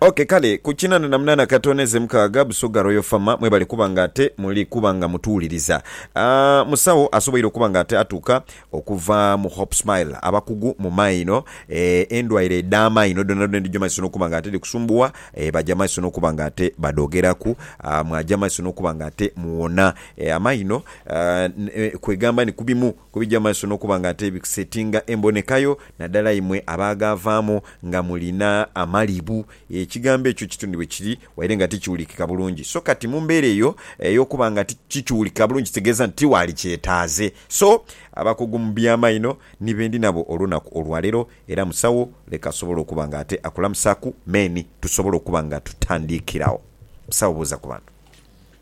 Ok kale ku kinana na munana katono eze mukaaga Busoga Royal Pharma mwebale kuba nga ate muli kuba nga mutuwuliriza. Aah musawo asoboire okuba nga ate atuuka okuva mu Hope Smile abakugu mu maino eeh endwaire edha maino dhona dhona edhija maiso nokuba nga ate dhikusumbuwa eeh baja maiso nokuba nga ate badhogeraku aah mwaja maiso nokuba nga ate muwona eeh amaino aah kwegamba ni kubimu Ku bigya mu maiso n'okuba nga ate bikusetinga emboneka yo, nadala imwe abaagaavaamu nga mulina amalibu, ekigambo ekyo kituni bwe kiri, waire nga tikiwulikika bulungi. So kati mu mbeera eyo ey'okuba nga tikiwulikika bulungi kitegeeza nti tiwaali kyetaaze. So, abakugu mu by'amaino ni be ndi nabo olunaku olwa leero, era musawo leka asobole okuba nga ate akulamusaaku. Meni. Tusobole okuba nga tutandiikiragho. Musawo buuza ku bantu.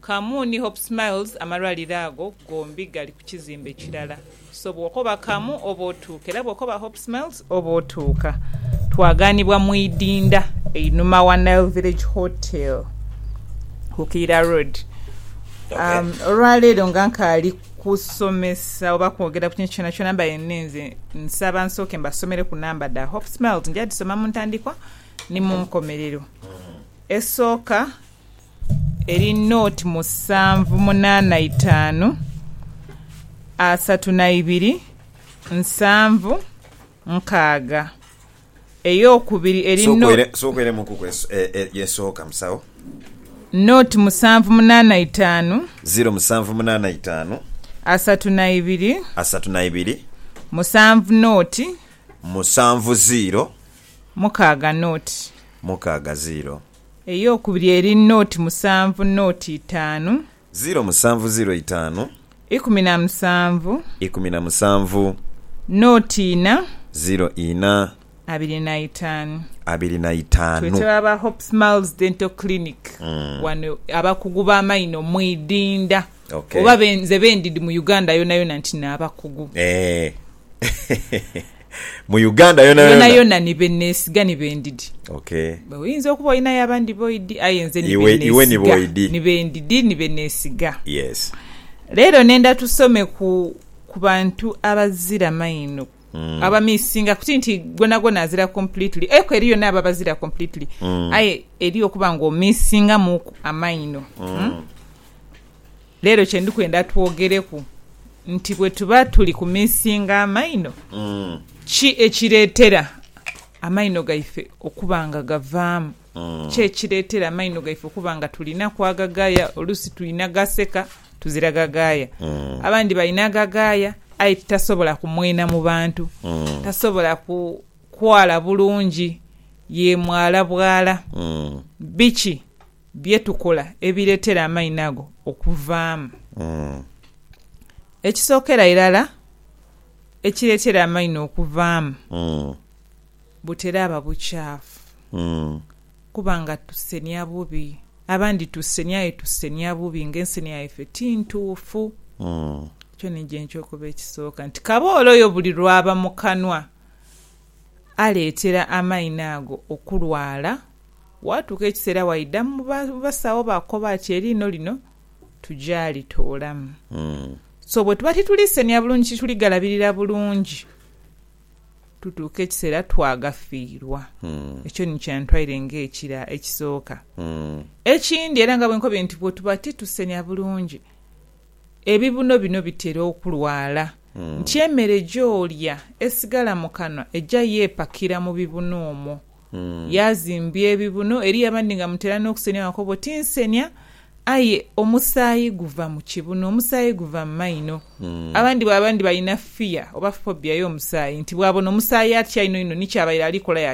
Kamu ni Hope Smiles amalwaliro ago gombi gali ku kizimbe kirala. So bw'okoba Kamu oba otuuka era bw'okoba Hope Smiles oba otuuka. Twagaanibwa mu idinda einhuma wa Nile Village Hotel ku Kiira Road. Olwaleero nga nkaali kusomesa oba kwogera ku kintu kyonakyona mbaire nninze, nsaba nsooke mbasomereku namba dha Hope Smiles. Nja dhisoma mu ntandikwa ni mu nkomerero. Esooka. eri nought musanvu munaana itaanu asatu na ibiri nsanvu nkaaga. Ey'okubiri eri nought. Sooka oiremuukuku esooka musawo. Nought musanvu munaana itaanu. Ziro musanvu munaana itaanu. Asatu na ibiri. Asatu na ibiri. Musanvu nought. Musanvu ziro. Mukaaga nought. Mukaaga ziro. Ey'okubiri eri noti musanvu noti itaanu. Ziro musanvu ziro itaanu. Ikumi na musanvu. Ikumi na musanvu. Noti ina. Ziro ina. Abiri na itaanu. Abiri na itaanu. Twetaba aba Hope Smiles Dental Clinic wano abakugu b'amaino mwidinda oba nze bendidi mu Uganda yonayona nti n'abakugu. mu Uganda yona yona yona ni benesiga ni bendidi okay oyinza okuba olinayo abandi boidi aye nze ni iwe iwe ni boidi ni bendidi ni benesiga yes lero nenda tusome ku ku bantu abazira maino mm. abamisinga kuti nti gona gona azira completely eko eriyo nabo abazira completely mm. aye eriyo okuba nga omisinga muku amaino mm. mm. Leero kye ndi kwenda twogereku nti bwe tuba tuli kumiisinga amaino, ki ekireetera amaino gaife okuba nga gavaamu? Ki ekireetera amaino gaife okuba nga tulinaku agagaaya? Oluusi twina gaseka tuzira gagaaya. Abandi balina agagaaya aye titasobola kumwena mu bantu, tasobola kwala bulungi, ye mwala bwala. Biki Bye tukola ebireetera amaino ago okuvaamu. Ekisookera irala ekireetera amaino okuvaamu butera aba bucaafu kuba nga tusenia bubi. Abandi tusenia aye tusenia bubi nga ensenia yaife ti ntuufu. Ekyo ni gye nkyokuba ekisooka nti kaboole oyo buli lw'aba mu kanwa aleetera amaino ago okulwala Waatuuka ekiseera waidha mu basawo baakukoba ati, Eriino lino tuja litoolamu. So bwe tuba tituli seniya bulungi, tituli galabirira bulungi, tutuuka ekiseera twagafiirwa. Ekyo ni kyantwaire ng'ekira ekisooka. Ekindi era nga bwe nkobye nti bwe tuba titusenia bulungi, ebibuno bino bitera okulwala nti emere gy'olya esigala mu kanwa eja yeepakira mu bibuno omwo. Yaazimbya ebibuno. Eriyo abandi nga mutera n'okusenia wakobo, Tinsenia. Aye omusaayi guva mu kibuno, omusaayi guva mu maino. Abandi bwaba ndi balina fear oba phobia y'omusaayi, nti bwabona omusaayi atya inho inho ni kyabaire ali kola